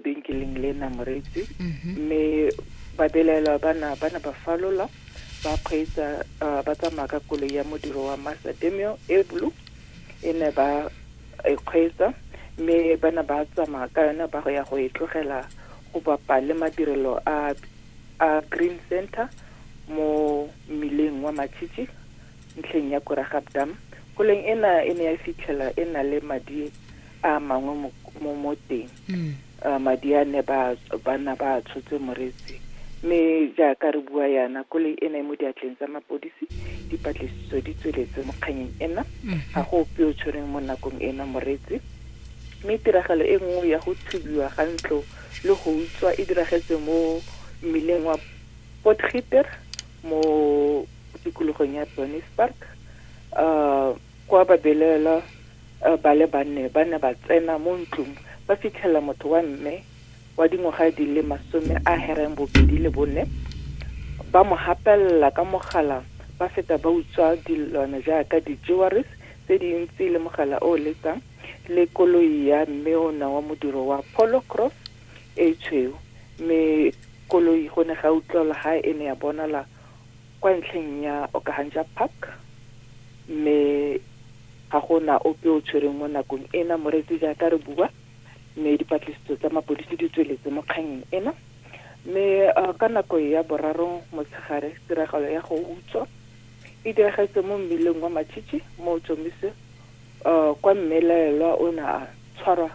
benkeleng le nang retse mhm. mme babelaelwa bana bana ba falola ba kgweetsa uh, ba tsamaya ka koloi ya modiro wa master demio e blue e ne ba e kgweetsa mme bana ba tsamaya ka yone ba go ya go e tlogela go bapa le madirelo a a green center mo mmileng wa matšhitšhi ntlheng ya koragabdam koleng ena e ne ya fitlhela e na le madi a mangwe mo mo moteng mm. uh, madi a ne ba bana ba tshotse moretsi mme jaaka re bua yana kole e ne mo diatleng tsa mapodisi dipatlisiso di tsweletse mo kganyeng ena mm-hmm. ga go ope o tshwereng mo nakong ena moretsi mme tiragalo e nngwe ya go thubiwa ga ntlo le go utswa e diragetse mo mmileng wa potgiter mo tikologong ya bonis park um uh, Kwa babelaelwa eh, ba le banne ba ne ba tsena mo ntlong ba fitlhela motho wa mme wa dingwaga di le masome a hereng bobedi le bone ba mo gapelela ka mogala ba feta ba utswa dilwana jaaka di-jewelries tse dintsi le mogala o o letang le koloi ya mme o na wa modiro wa polo cross e tshweu mme koloi go ne ga utlwala ga e ne ya bonala kwa ntlheng ya Okahanja Park mme ga go na ope o tshwereng mo nakong ena moreetsi jaaka re bua mme dipatlisiso tsa mapodisi di tsweletse mo kganyeng ena mme uh, ka nako ya boraro motshegare tiragalo ya go utswa e diragetse mo mmileng wa matšhitšhi mo tsomise uh, kwa mmelaelwa o ne a tshwarwa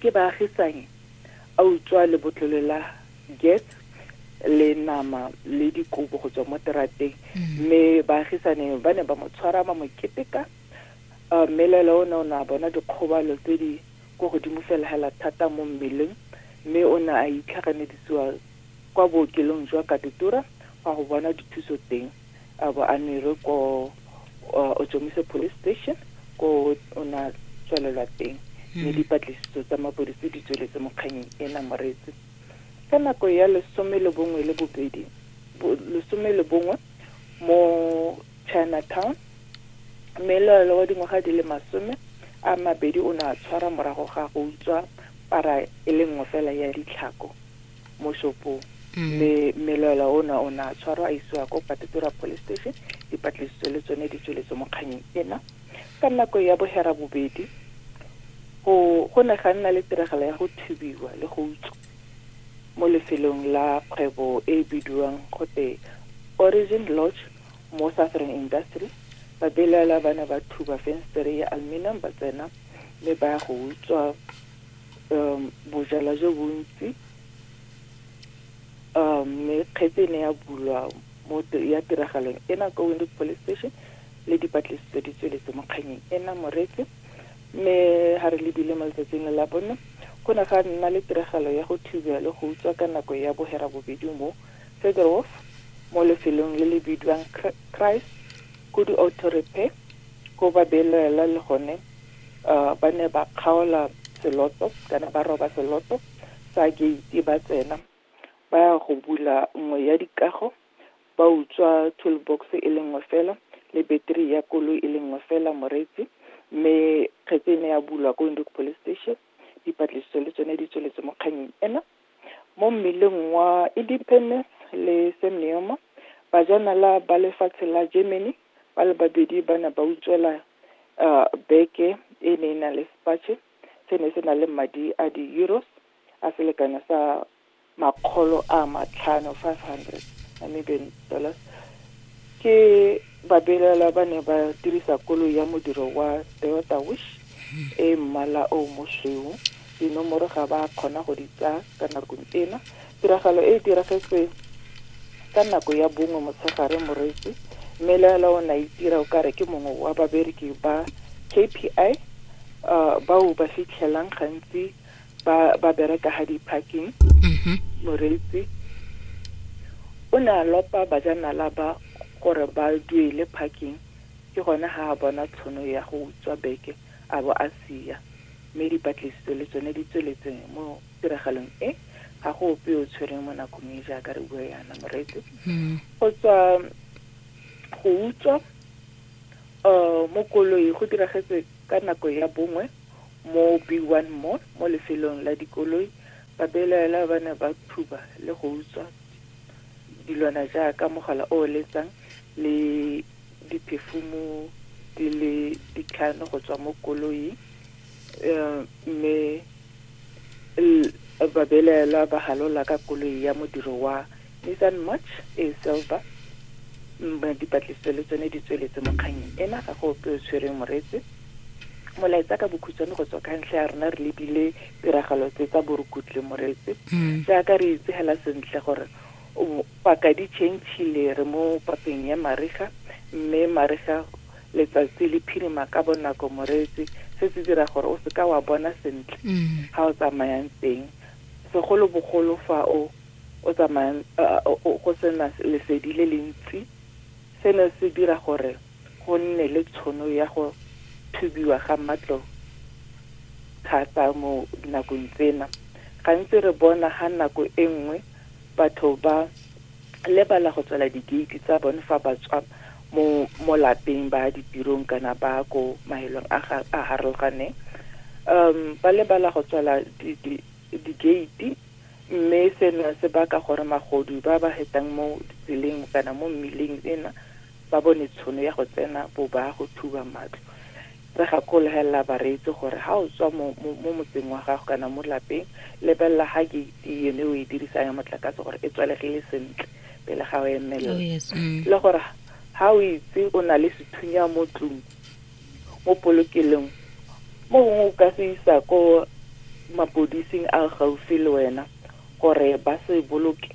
ke baagisanyi a utswa lebotlolo la Get le nama le dikobo go tswa mo terateng mm. mme baagisane ba ne ba mo tshwara ba mo keteka uh, mme lela o ne o ne a bona dikgobalo tse di ko godimo fela hela thata mo mmeleng mme o ne a itlhaganedisiwa kwa bookelong jwa katutura fa go bona dithuso teng a bo a nere ko uh, ojomise police station ko o ne a tswalelwa teng mme mm. dipatlisiso tsa mapodisi di tsweletse mo kganyeng e na moretse Ka nako ya lesome le bongwe le bobedi, lesome le bongwe mo Chinatown, mmeloela wa dingwaga di le masome a mabedi o ne a tshwara morago ga go utswa para e le nngwe fela ya ditlhako mo shopong. Mm. Mme mmeloela ona o ne a tshwarwa a isiwa ko Katutura Police Station, dipatlisiso le tsone di tsweletse mo kganyeng ena. Ka nako ya bohera bobedi, go, go ne ga nna le tiragalo ya go thibiwa le go utswa mo lefelong la kgwebo e e bidiwang gote Origin Lodge mo Southern Industry. Babelaela ba ne ba thuba fenstere ya aluminum ba tsena mme ba ya go utswa um, bojalwa jo bontsi um, mme kgetse e ne ya bulwa mo ya tiragalong ena kwa Windhoek Police Station le dipatlisiso di tsweletse mo kganyeng ena moretse mme ga re lebile mo letsatsing le la bonno go ne ga nna le tiragalo ya go thubiwa le go utswa ka nako ya bohera bobedi mo Federwolf mo lefelong le le bidiwang Christ Kudu Auto Repair ko babelaela le gone uh, ba ne ba kgaola seloto kana ba roba seloto sa gate ba tsena ba ya go bula nngwe ya dikago ba utswa toolbox e le nngwe fela le battery ya koloi e le nngwe fela moreetsi mme kgetse e ne ya bulwa ko Windhoek police station dipatlisiso le tsone di tsweletse mo kganyeng ena mo mmeleng wa independence le semneoma bajanala ba lefatshe la germany ba le babedi ba ne ba utswela um beke e ne e na le spache se ne se na le madi a di-euros a selekanyo sa makgolo a matlhano 500 Namibian dollars ke babelaelwa ba ne ba dirisa koloi ya modiro wa Toyota Wish e mmala o mosweu dinomoro ga ba kgona go di tsaya ka nakong ena tiragalo e e diragetse ka nako ya bongwe motshegare moreetsi mme laela o ne a itira o kare ke mongwe wa babereki ba KPI uh, bao ba fitlhelang gantsi ba ba bereka ha di parking mhm. moreetsi o ne a lopa bajanala ba gore ba duele parking ke gone ga a bona tshono ya go utswa beke a bo a sia mme dipatlisiso le tsone di tsweletse mo tiragalong e ga go ope o tshwereng mo nakong e jaaka re bua yana moreetsi hmm. go tswa go utswa um mo koloi go diragetse ka nako ya bongwe Mo Bhuiwan Mall mo lefelong la dikoloi, babelaelwa ba ne ba thuba le go utswa dilwana jaaka mogala o o letsang le diphefumu di le ditlhano go tswa mo koloing mme babelaelwa ba halola ka koloi ya modiri wa Nathan Mutch, A Silver, Mme, dipatlisiso le tsone di tsweletse mo kgannyeng ena, ga go ope o tshwereng moretse. Molaetsa ka bokhutshwane go tswa ka ntlha ya rona re lebile tiragalo tse tsa borukutle moretse. Jaaka re itse hela sentle gore o paka di chentshile re mo papeng ya mariga, mme mariga letsatsi le phirima ka bonako moretse, se se dira gore o seka wa bona sentle ha o tsamayang teng, segolobogolo fa o o tsamayang go sena lesedi le le ntsi, se ne se dira gore go nne le tshono ya go thubiwa ga matlo thata mo dinakong tsena. Gantsi re bona ga nako e nngwe batho ba lebala go tswala digeiti tsa bone fa ba tswa mo mo lapeng ba ditirong kana ba ko mahelong a a harologaneng um ba lebala go tswala digeiti Mme sena se baka gore magodu ba ba hetang mo ditseleng kana mo mmileng ena ba bone tshono ya go tsena bobaa go thuba matlo. Re gakolohelela bareetsi gore ha o tswa mo mo motseng wa gago kana mo lapeng, lebelela ha gate yone e o e dirisang ya motlakase gore e tswalegile sentle pele ga o emelela. Le gore ha o itse o na le sethunya mo tlung, mo polokelong, mo gongwe o ka se isa ko mapodising a gaufi le wena gore ba se boloke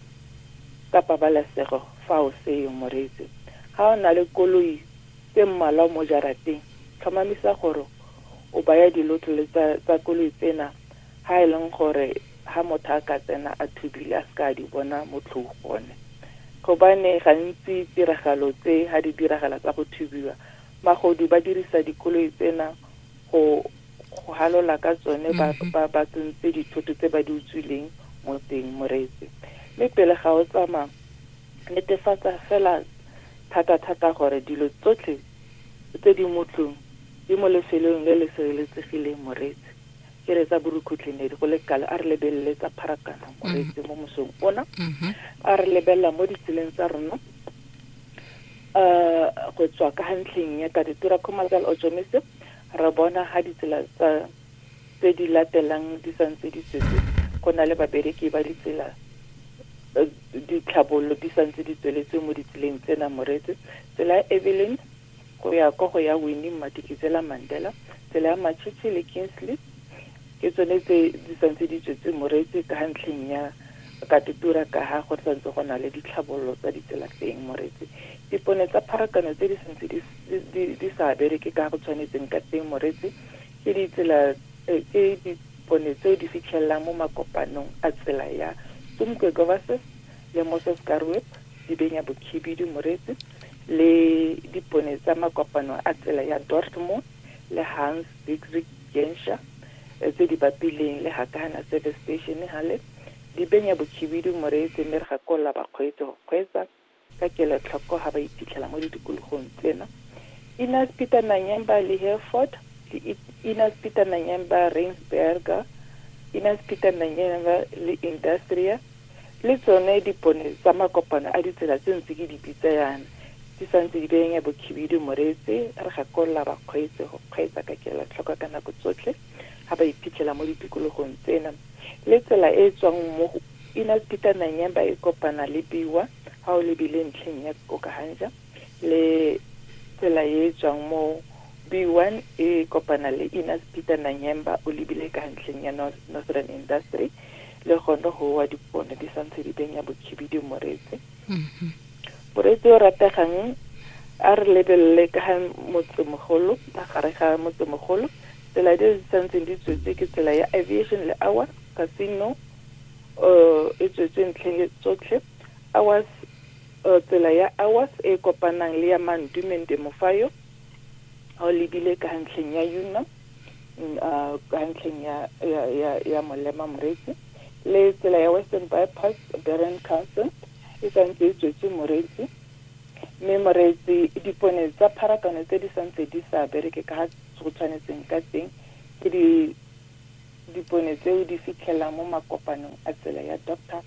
ka pabalesego fa o seyo. Moreetsi, ga o na le koloi tse mmalwa mo jarateng, tlhomamisa gore o baya dilotlole tsa, tsa koloi tsena ha e leng gore ha motho a ka tsena a thubile a seka a di bona mo tlhong gone. Gobane gantsi tiragalo tse ha di diragala tsa go thubiwa, Magodu ba dirisa dikoloi tsena go go halola ka tsone ba mm-hmm. ba ba tsontse dithoto tse ba di utswileng mo teng moreetsi mme pele ga o tsamaya netefatsa fela thata-thata gore dilo tsotlhe tse di mo tlong di mo lefelong le le sireletsegileng moreetsi ke re tsa borukhutlhenedi go le kalo a re lebelele tsa pharakano moreetsi mo mosong ona mm-hmm. a re lebelela mo ditseleng tsa rona go tswa ka ntlheng ya Taditira Khumalokaal Ojomise re bona ga ditsela tsa tse di latelang di santse di tsetse go na le babereki ba ditsela eh, ditlhabololo di santse di tsweletse mo ditseleng tsena moretse tsela ya evelyn go ya kwa go ya winning matikitsela mandela tsela ya machichi le kingsley Ke tsone tse di santse di tswetse moretse ka ntlheng ya katutura ka ha go santse go na le ditlhabololo tsa ditsela teng moretse. Dipone tsa pharakano tse di santse di, di, di sa bereke ka go tshwanetseng ka teng moretse ke ditsela eh, ke dipone tseo di fitlhelelang mo makopanong a tsela ya Tumkwe Govases le Moses Karwep Dibenya Bokhibidu moretse le dipone tsa makopano a tsela ya Dortmund le Hans Diedrich Genscher, tse di bapileng le Hakana Service Station Halle, di benya bokhibidu moreetsi mme re gakolola bakgweetsi go kgweetsa ka kelotlhoko ha ba iphitlhela mo ditikologong tsena. Inez Peter Nanyemba le Hereford, le Inez Peter Nanyemba Reinsberger, Inez Peter Nanyemba le Industria, Le tsone dipone tsa makopano a ditsela tse ntse ke di bitsa yana, di sa ntse di benya bokhibidu moretse, re gakolola bakgweetsi go kgweetsa ka kelotlhoko ka nako tsotlhe ga ba iphitlhela mo ditikologong tsena. Le tsela e e tswang mo go Innes Peter Nanyemba e kopana le Biwa ga o lebile ntlheng ya Okahanja le tsela e e tswang mo Biwa e kopana le Innes Peter Nanyemba o lebile ka ntlheng ya Northern Industry, le gone go wa dipone di santse di benya bokhibidu moreetsi mm-hmm. moreetsi o rategang a re lebelele ka ga motsemogolo magare ga motsemogolo tsela di di santseng di tswetse ke tsela ya aviation le awa casino um e tswetse ntlheng tsotlhe awas eh, tsela ya awas e kopanang le ya mandumen demofayo ga o lebile ka ntlheng ya unam uh, ka ntlheng ya, ya, ya, ya molema moretsi le tsela ya western bypass beren castle e santse e tswetse moretsi mme moretsi dipone tsa pharakano tse di santse di sa bereke ka go tshwanetseng ka teng ke di dipone tseo di fitlhelang mo makopanong a tsela ya doctor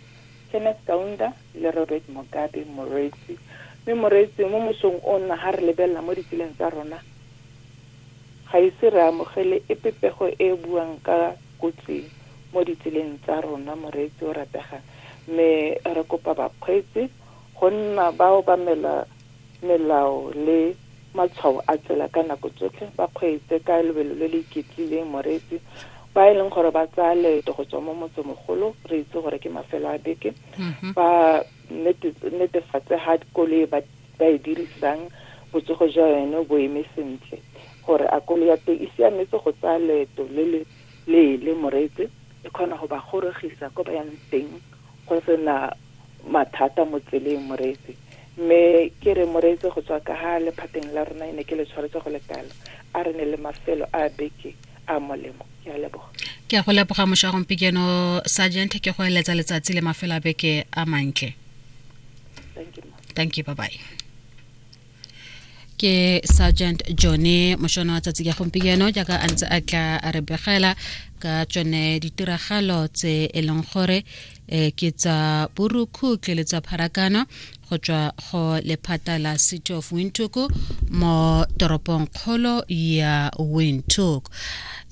kenneth kaunda le robert mogabe moretsi mme moretsi mo mosong o nna ga re lebelela mo ditseleng tsa rona Ga ise re amogele epe pego e e buang ka kotsi mo ditseleng tsa rona, moreetsi o rategang, mme re kopa bakgweetsi go nna ba obamela melao le matshwao a tsela ka nako tsotlhe, ba kgweetse ka lebelo le le iketlileng, moreetsi, ba e leng gore ba tsaya leeto go tswa mo motsemogolo, re itse gore ke mafelo a beke, ba netefatse ga koloi ba ba e dirisang botsogo jwa yone bo eme sentle gore a kolo ya teng e siametse go tsaya leeto le le leele moreetse e kgona go ba gorogisa ko ba yang teng go sena mathata mo tseleng moreetse mme ke re moreetse go tswa ka ga lephateng la rona e ne ke le tshwaretse go lekalo a re ne le mafelo a beke a molemo ke a leboga ke a go leboga mošwa gompikeno sergeant ke go eletsa letsatsi le mafelo a beke a mantle thank you thank you bye bye ke sergeant jone mošona wa tsatsi ka gompieno jaaka a ntse a tla a re begela ka tsone ditiragalo tse e leng gore um ke tsa borukhutle le tsa pharakano go tswa go lephata la city of windhoek mo toropong kgolo ya windhoek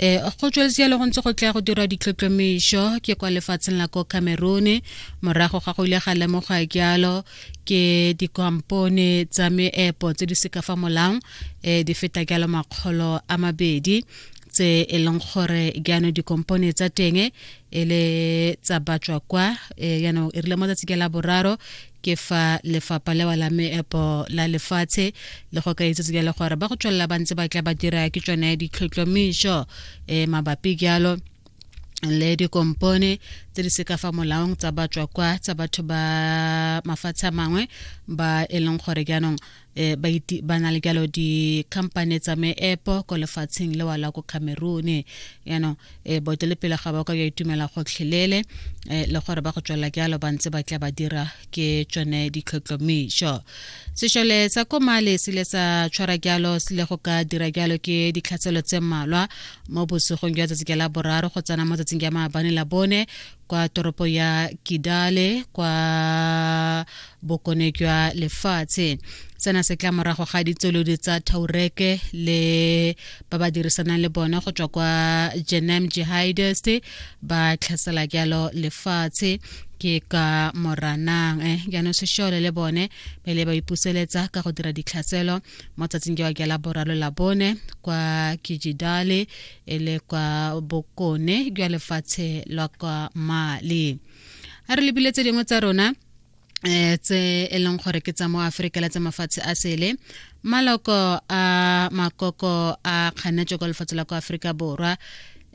um go tsweletse yalo go ntse go tla go dirwa ditlhotlhomišo ke kwa lefatsheng la ko cameroon morago ga go ile ga lemoga jalo ke dikompone tsa meepo tse di seka fa molang um eh, di feta jalo makgolo a mabedi tse e leng gore jaanong dikompone tsa teng e le tsa batswa kwa eh, jaanong e rile mo tsatsi ke la boraro ke fa lefapha lewa la meepo la lefatshe le go ka itsetse jalo gore ba go tswelela ba ntse ba tla ba dira ke tsone ditlhotlhomišo um mabapi jalo le dikompone tse di seka fa molaong tsa batswa kwa tsa batho ba mafatshe a mangwe ba e leng gore jaanong um ba na le jalo dikhamphane tsa meepo ko lefatsheng lewa la ko cameroon yaanong um boetelepele ga ba ka ja itumela gotlhelele um le gore ba go tswelela jalo ba ntse ba tla ba dira ke tsone ditlhotlhomišo sešole sa ko male se ile sa tshwara jalo se ile go ka dira jalo ke ditlhatselo tse mmalwa mo bosigong jwa tsatsi ka la boraro go tsena mo tsatsing ya maabane la bone kwa toropo ya kidale kwa bokone jwa lefatshe sena se tla morago ga ditsolodi tsa taureke le ba ba dirisanang le bone go tswa kwa jenem jihadist ba tlhasela jalo lefatshe ke ka moranang eh, jaanong sešole le bone pele ba ipuseletsa ka go dira ditlhaselo mo tsatsing ke wa ke la boraro la bone kwa kijidale e le kwa bokone jwa lefatshe lwa kwa mali a re lebile tse dingwe tsa rona um tse e leng gore ke tsa mo aforika la tsa mafatshe a sele maloko a makoko a kganetso kwa lefatshe la kwa aforika borwa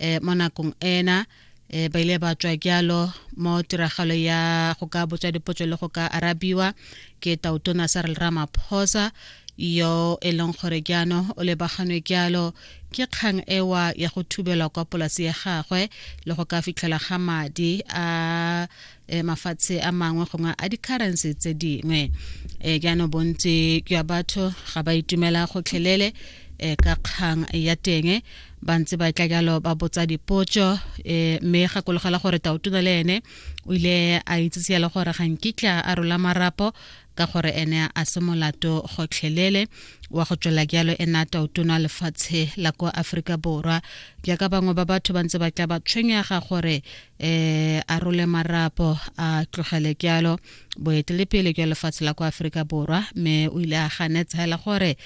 um mo nakong ena e ba ile ba tswa jalo mo tiragalo ya go ka botswa dipotso le go ka arabiwa ke tautona sa re ramaphosa yo e leng gore jaanong o lebaganwe jalo ke kgang ewa ya go thubelwa kwa polasi ya gagwe le go ka fitlhela ga madi a e mafatshe a mangwe gongwe a di-currency tse dingwe e jaanong bontsi jwa batho ga ba itumela gotlhelele e ka kgang ya teng ba ntse ba tla jalo ba botsa dipotso um mme gakologela gore taotuna le ene o ile a itsise le gore ga nkitla a rola marapo ka gore ene a se molato gotlhelele wa go tswela jalo ena taotona lefatshe la kwa aforika borwa jaaka bangwe ba batho ba ntse ba tla ba tshwenyega gore eh a role marapo a tlogele kyalo boetelepele jwa lefatshe la kwa aforika borwa mme o ile a ganetsa fela gore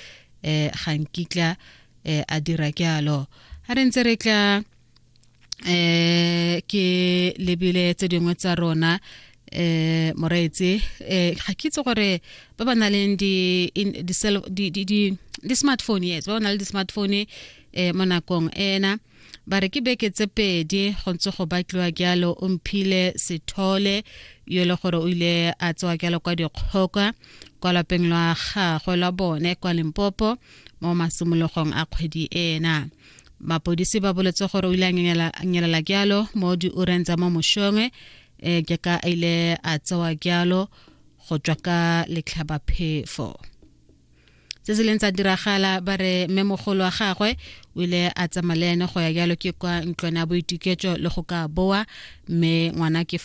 eh ga nkitla eh a dira kyalo a re ntse re tla eh ke lebile tse dingwe tsa rona eh moreetse eh ga ke itse gore ba ba na leng di di di smartphone yes ba ba na le di smartphone eh mo nakong ena ba re ke beke tse pedi go ntse go batliwa jalo o mphile sethole yo e le gore o ile a tsewa jalo kwa dikgoka kwa lapeng lwa gagwe lwa bone kwa limpopo mo masimologong a kgwedi ena mapodisi ba boletse gore o ile a nyelela jalo mo diureng tsa mo mošongwe um ke ka a ile a tsewa jalo go tswa ka letlhabaphefo tse se leng tsa diragala ba re mmemogolo wa gagwe o ile a tsamaya le ene go ya jalo ke kwa ntlwana ya boituketso le go ka boa mme ngwana ke